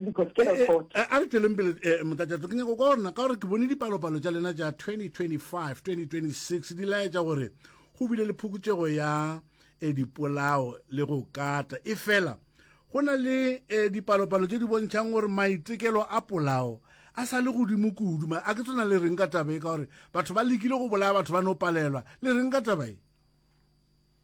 because ke record eh, eh, eh, a re tšweleng pele motatšatso ke nyako ka gorena ka gore ke bone dipalopalo tša lena tša 2025 2026 di laetša gore go bile le phokotšego ya e dipolao le go kata e fela go na le e dipalopalo tše di bontšhang gore maitekelo a polao a sa le godimo kudu ma a ke tsona le reng ka tabe ka gore batho ba lekile go bolaya batho ba no palelwa le reng ka tabae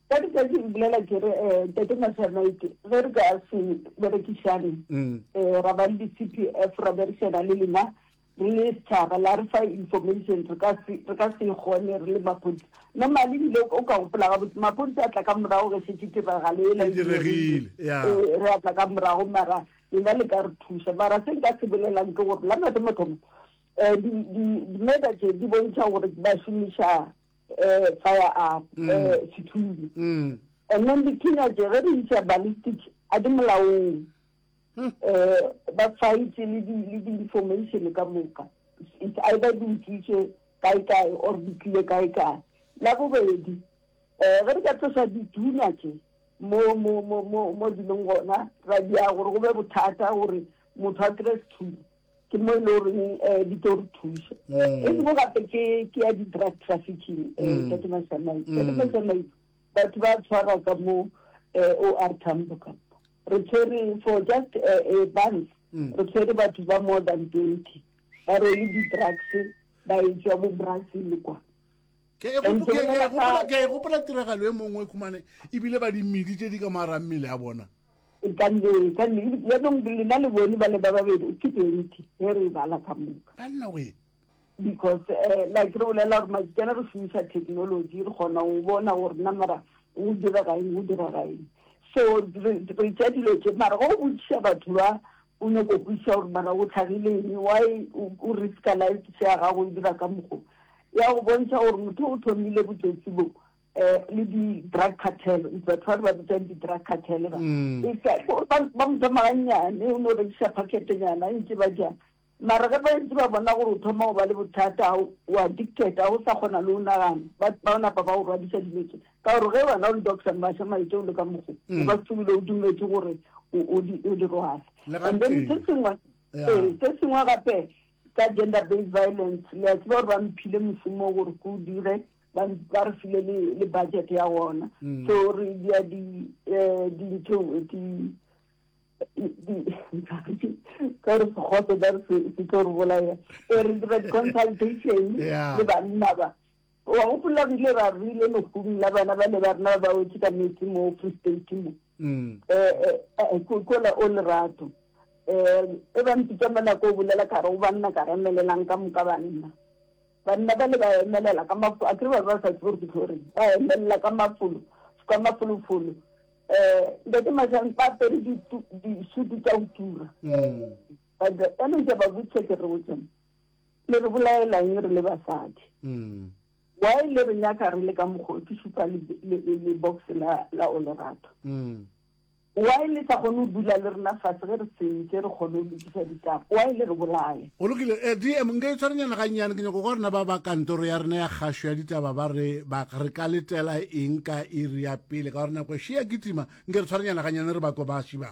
Ka letšatši re bolela ke re, um Tate Masanayke, ge re ka se berekišane, um ra ba le di-CPF, ra berišana le lena re le setšhaba, la re fa information, re ka se, re ka se e kgone re le maphodisa. Normally ebile o ka gopola gabotse, maphodisa a tla ka morago ge šetše tiragalo ela e diregile, ya, ee, re a tla ka morago, mara lena le ka re thuša. Mara se nka se bolelang ke gore la mathomo-thomo, um di, di, di-murder tše di bontšha gore ba šomiša eh, fire up, mm. eh, sethunya. Mm. And then the teenage, re di isa ballistic, a di molaong. Mm. Eh, ba fight le di, le di information ka moka. It's either di utswitse kae kae or di tlile kae kae. La bobedi, eh, re di ka tlosa dithunya tse mo mo mo mo mo dilong gona ra dia gore go be bothata gore motho a kry-e sethunya ke mo e le goreng um eh, di tlo re thusa mm. e sengwe gape ke ya di-drug trafficking um mm. ka ke masamai ka ke masamai batho ba tshwarwa ka mo eh, o r tambo ka re tshwere for just eh, a month re tshwere batho ba more than twenty ba rwele di-drugs ba e tswa bo brazil kwa ke e gopola tiragalo e mongwe khumane ebile ba dimmedi tse di ka maarang mmele ya bona E ka nne, e ka nne. Yanong lena le bone ba le ba babedi, ke twenty, ge re e bala ka moka. Banna we. Because eh, like re bolela gore matsitsana re šomiša technology, re kgona go bona gore na mara go direga eng, go direga eng. So re re tša dilo tše, mara ge o botšiša batho ba, o nyako go kwešiša gore mara go tlhagile eng, why o o risk-a life se ya gago e dira ka mokgo. Ya go bontšha gore motho o thomile botsotsi bo. eh le di drug cartel o tla tshwara ba bitsa di drug cartel ba mm. e ka ba ba mo tsama nyane o no re sha packet nyana e ntse ba ja mara ga ba ntse ba bona gore o thoma go ba le bothata o addicted ga o sa kgona le o nagana ba bona ba ba o rwadisa diletse ka gore ge wena o le doctor ba sha maitse o le ka mogo mm. ba tsubile o dumetse gore o di o di rohale and then se sengwe eh, se sengwe gape ka gender based violence le a tseba gore ba mphile mosomo gore ko dire ba re ba re file le le budget ya gona mm. so re dia di eh di ntho di di ka re kgotse ba re se se tlo re bolaya e re dira di consultation le banna ba wa go pula bile ra rile no kumi la bana ba le ba rena ba o tsa metsi mo free state mo mm. eh eh, eh ko ko la o le rato eh e ba ntse tsa mana ko bulela ka re o banna ka re melelang ka mo ka banna Banna bale ba emelela ka mafolo, akere ba be ba sa tsebe gore ke tlo reng, ba emelela ka mafolo, ka mafolofolo. Um Ntate Mashang ba apere ditu, disutu tša go tura. Ba dira, ka no ke a ba botšiša ke re botsone, le re bolaelang re le basadi? Why le re nyaka re le ka mokgwa o? Ke šupa le, le, le box la, la Olerato. Why le sa kgone go dula le rena fase ge re sentše re kgone go lokiša ditaba? Why le re bolaya? Go lokile. Eh, DM, nka itshwarenyana gannyane. Ke nyaka go kwa rena ba ba kantoro ya rena ya kgašo ya ditaba ba re ba re ka letela eng ka iri ya pele ka gore nako e še ya kitima. Nke re tshwarenyana gannyane re ba kobasi ba.